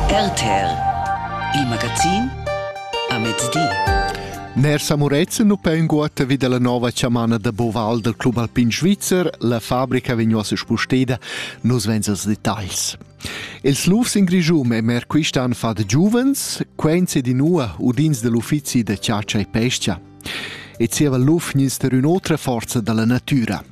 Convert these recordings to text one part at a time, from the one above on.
RTL Il magazin a mezdi. Ner Samurezen nu pe inguotta vi dalla nova chamana da Boval dal Club Alpin Svizzer, la fabrica vegn uossa spusteda, nus vens als detagls. Els lufs in Grischum e mer quistan fat giuvens, quens ed inua udins dell'uffizi da chatscha e pescha. E zieva luf gnins der ün'otra forza dalla natüra.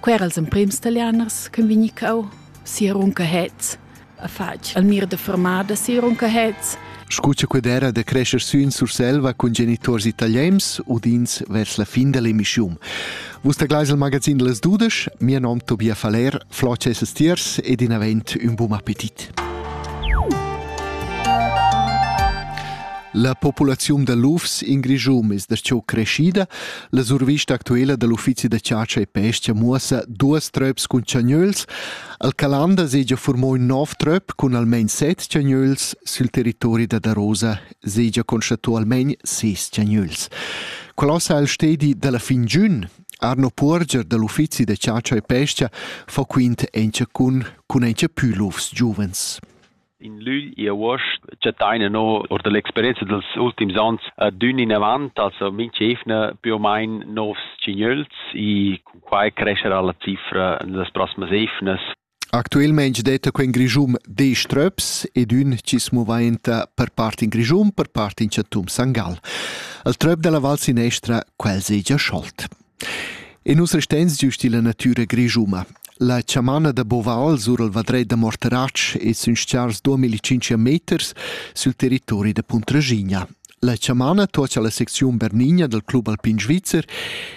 Quer els emprems talianers che vegni cau sia runcahets a fatg al mir de fermada sia runcahets Scu cha qued era da crescher sün Surselva cun genituors italiens udins vers la fin da l'emischiun. Vus taglais il magazin de les dudesch, mia nom Tobia Faller, flot esses tiers ed in avent un bun appetit. La populaziun da lufs in Grischum es da ciò creschida, La survista actuala dal uffizi da chatscha e pesca muossa duos tröps cun chagnöls. Al Calanda segia formò ün nov tröp cun almain set chagnöls sül territori da Darosa segia constatò almain ses chagnöls. Qual sa il stedi dalla fin giun? Arno Puorger dal uffizi da chatscha e pesca fa quint encha cun cun encha pü lufs giuvens. In lügl e avuost chattain no our da l'experienza dals ultims ons adün inavant, also mincha evna più o main nouvs tsignöls e cun quai crescherà la cifra in las prossimas evnas. Actuelmaing detta quel Grischun desch tröps ed ün chi's muvainta per part in Grischun, per part in chatum Sangal. Il tröp dalla Val Sinestra quel segia scholt. E nus resteins giust illa natüra grischuna. La chamana da Boval sur il vadret da Morteratsch es sün s-chars duamillicinch meters sül territori da Puntraschigna. La chamana tuocha la secziun Bernigna dal Club Alpin Svizzer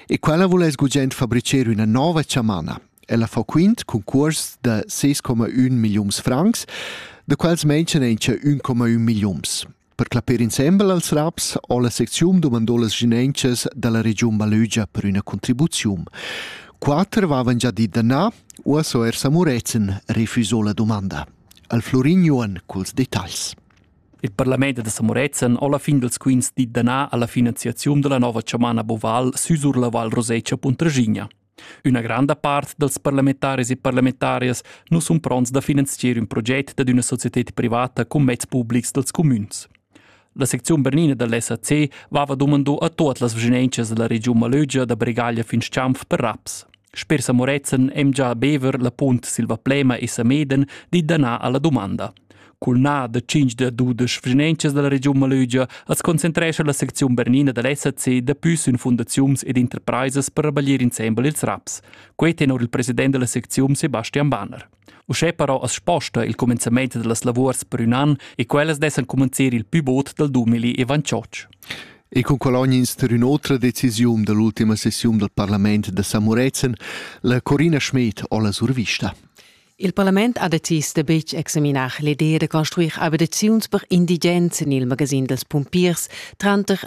e quella voul es gugent fabricher üna nova chamana. Ella fa quint cun cuors da 6,1 milliuns francs, da quels menschan encha 1,1 milliuns. Per clapper insembel als raps ho la secziun dumandò las ginenchas da la regiun Balögia per üna contribuziun. Quatter vavan già dit da na, uossa er sa Muretzen refusò la domanda. Al Florin Johan culs detagls. Il parlament da Samorezen ho la fin dels quints dit da na alla finanziaziun della nova chamana Boval süsur la Val Rosecha Puntraschigna. Üna granda part dals parlamentaris e parlamentarias nu sun pronts da finanzier ün proget dad üna societed privata cun mezs publics dals cumüns. La secziun bernina da l'SAC vava dumando a tuot las vschinenchas da la regiun Malögia da Bregaglia fin Schanf per raps. Sper Samorezen em già a Bever la punt Silvaplema e Sameden dit da na alla dumanda. Cul na da 5 da dudesch vrinenchas dalla regiun Malögia as concentrescha la secziun bernina da l'SAC dapü sün fundaziuns ed interpraisas per rabaglier insembel ils raps. Quei tenor il president della secziun Sebastian Banner. Uschè però as sposta il comenzament dellas lavurs per ün an e quellas dessan cumanzir il pü bod dal 2028. E con Cologne inster ün'otra decisiun dall'ultima sessiun dal parlament da Samurezen, la Corina Schmed ho la survista. Il parlament ha decis da betg examinar l'idea da construir abitaziuns per indigens en il magasin dals pumpiers tranter